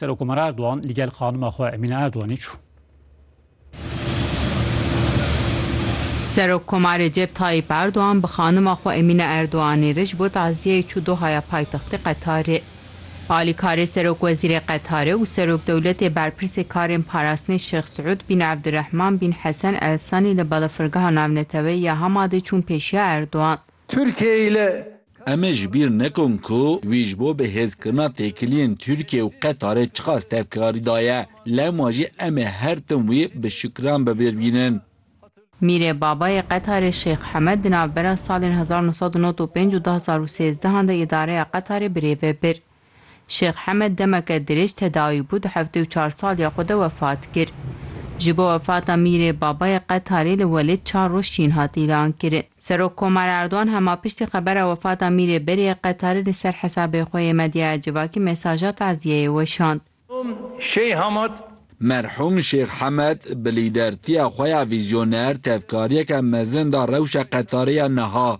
Serokomar Erdogan li gel xanima xwe Emîne Erdoganê çû. Serokkomar Recep Tayyîp Erdogan bi xanima xwe Emîne Erdoganê re ji bo taziyeyê çû Dohaya paytextê Qetarê. Alîkarê Serokwezîrê Qetarê û Serokdewletê Berpirsê Karên Parastinê Şêx Siûd bin Evdirehman bin Hesen Al Sani li Balafirgeha Navneteweyî ya Hamadê çûn pêşiya Erdogan. Tirkiyeyê li Em ê ji bîr nekin ku wî ji bo bihêzkirina têkiliyên Tirkiye û Qetarê çiqas tevkarî daye. Lewma jî em ê her tim wî bi şikran bibîrbînin. Mîrê Babayê Qetarê Şêx Hemed di navbera salên hezar û nû sed û nod û pênc û du hezar û sêzdehan de îdareya Qetarê birêve bir. Şêx Hemed demeke dirêj tedawî bû di heftê û çar saliya xwe de wefat kir. Ji bo wefata Mîrê Babayê Qetarê li Welêt çar roj şîn hat îlan kirin. Serok Komar Erdogan hema piştî xebera wefata Mîrê Berê yê Qetarê li ser hesabê xwe yê medyaya civakî mesaja taziyeyê weşand. Şêh Hamed. Merhûm Şêx Hamed bi lîdertiya xwe ya vîzyoner tevkariyeke mezin da rewşa Qetarê ya niha.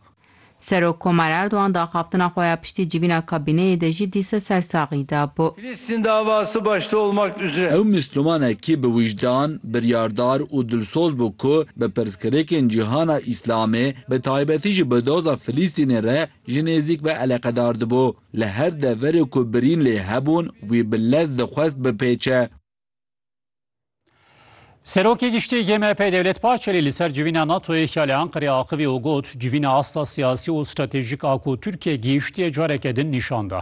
Serok Komar Erdogan di axaftina xwe ya piştî civîna kabîneyê de jî dîsa ser saxî da bû. Filîstîn davası başta olmak üzre. Ew Mislûmanekî bi wijdan, biryardar û dilsoz bû ku bi pirsgirêkên cîhana Îslamê, bi taybetî jî bi doza Filîstînê re Ji nêzîk ve eleqedar dibû. Li her deverê ku birîn lê hebûn wî bi lez dixwest bipêçe. Serokê Giştî yê MHP'ê Dewlet Bahçelî li ser civîna NATO'yê ya li Anqerê axivî û got, Civîna asta siyasî û stratejîk a ku Tirkiye gihîştiye careke din nîşan da.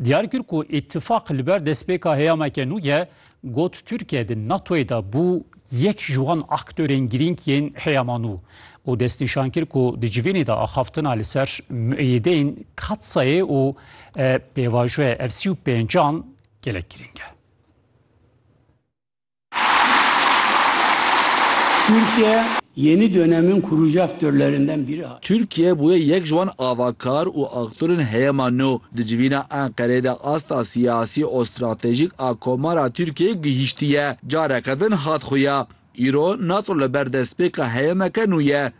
Diyar kir ku îtîfaq li ber destpêka heyameke nû ye Got Tirkiye di NATOyê de bû yek ji wan aktorên girîng yên heyamano û destnîşan kir ku di civînê de axaftina li ser mueyideyên Katsayê û pêvajoya F sî û pênc an gelek girîng e. Tirkiye yeni dönemin kurucu aktörlerinden biri. Tirkiye bûye yek ji wan avakar û aktorên heyamano Di civîna Enqereyê de asta siyasî û stratejîk a Komara Tirkiyeyê gihîştiye, careke din hat xuya. Îro Nato li ber destpêka heyemeke nû ye.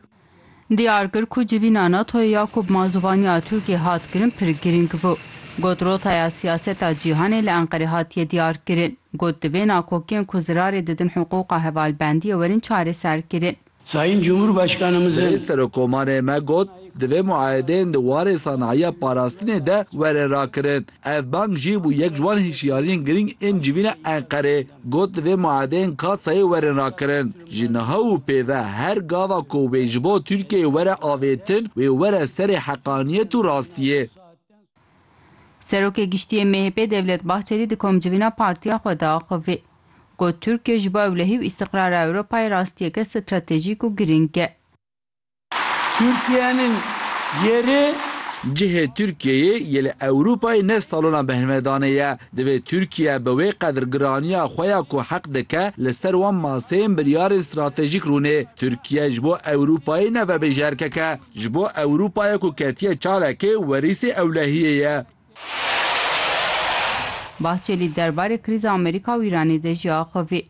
Diyar kir ku civîna Natoyê ya ku bi manzûvaniya Tirkiyeyê hat kirin pir girîng bû. Got rotaya siyaseta cîhanê li Enqerê hatiye diyar kirin. Got divê nakokiyên ku zirarê didin hiqûqa hevalbendiyê werin çareserkirin. Sayîn Cumhurbaşkanımızın. Divê Serokomarê me got, divê muayedeyên di warê sanayiya parastinê de were rakirin. Ev bang jî bû yek ji wan hişyariyên girîng ên civîna Enqerê. Got divê muayedeyên Katsayê werin rakirin. Ji niha û pêve her gava ku wê ji bo Tirkiyeyê were avêtin, wê were serê heqaniyet û rastiyê. Serokê Giştî yê MHP'ê Devlet Bahçelî di komcivîna partiya xwe de axivî, got, Tirkiye ji bo ewlehî û îstiqrara Ewropayê rastiyeke stratejîk û girîng e. Tirkiyenin yeri. Cihê Tirkiyeyê yê li Ewropayê ne salona behnvedanê ye. Divê Tirkiye bi wê qedir giraniya xwe ya ku heq dike li ser wan maseyên biryarên stratejîk rûnê. Tirkiye ji bo Ewropayê ne vebêje erkeke. Ji bo Ewrûpayê ku ketiye çalekê werîsê ewlehiyê ye. Bahçelî derbarê krîza Amerîka û Îranê de jî axivî.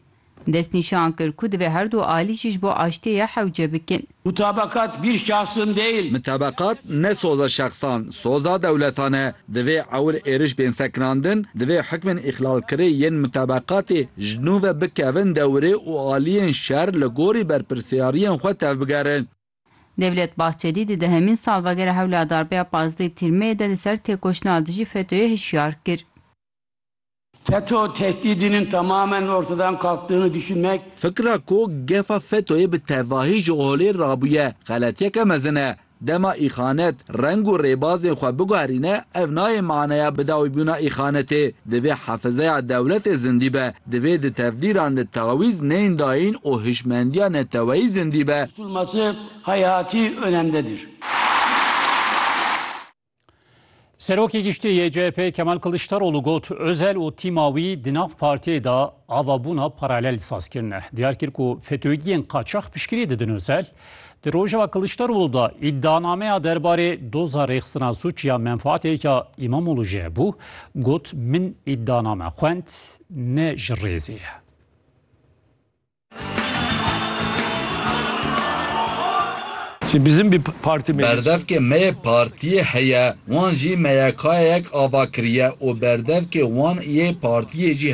Destnîşan kir ku divê her du alî jî ji bo aştiyê hewce bikin. Mutabakat bir şahsın değil. Mutabakat ne soza şexsan, soza dewletan e. Divê ewil êriş bên sekinandin, divê hukmên îxlalkirê yên mutabakatê ji nû ve bikevin dewirê û aliyên şer li gorî berpirsyariyên xwe tevbigerin. Devlet Bahçelî di dehemîn salvegera hewla darbeya pazdeh Tîrmeyê de li ser têkoşîna dijî FETÖ'yê hişyar kir. FETÖ tehdîdînên temamen ortadan kalktiğini düşünmek. Fikra ku gefa FETÖ'yê bi tevahî ji holê rabûye xeletiyeke mezin e. Dema îxanet reng û rêbazên xwe biguherîne ev nayê maneya bidawîbûna îxanetê. Divê hefizeya dewletê zindî be. Divê di tevdîran de tawîz neyên dayîn û hişmendiya neteweyî zindî be. tutulması hayati önemdedir. Serokê Giştî yê CHP'ê Kemal Kiliçdaroglu got, Özel û tîma wî di nav partiyê de avabûna paralel saz kirine. Diyar kir ku FETÖ'giyên qaçax piştgirî didin Özel. Di rojeva Kiliçdaroglu de îdianameya derbarê doza rêxistina sûc ya menfaatê ya Îmamoglu jê hebû, got, Min îdianame xwend, Kurd ne ji rêzê ye. Berdevkê me yê partiyê heye, wan jî meyekayeyek ava kiriye û berdevkê wan yê partiyê jî heye.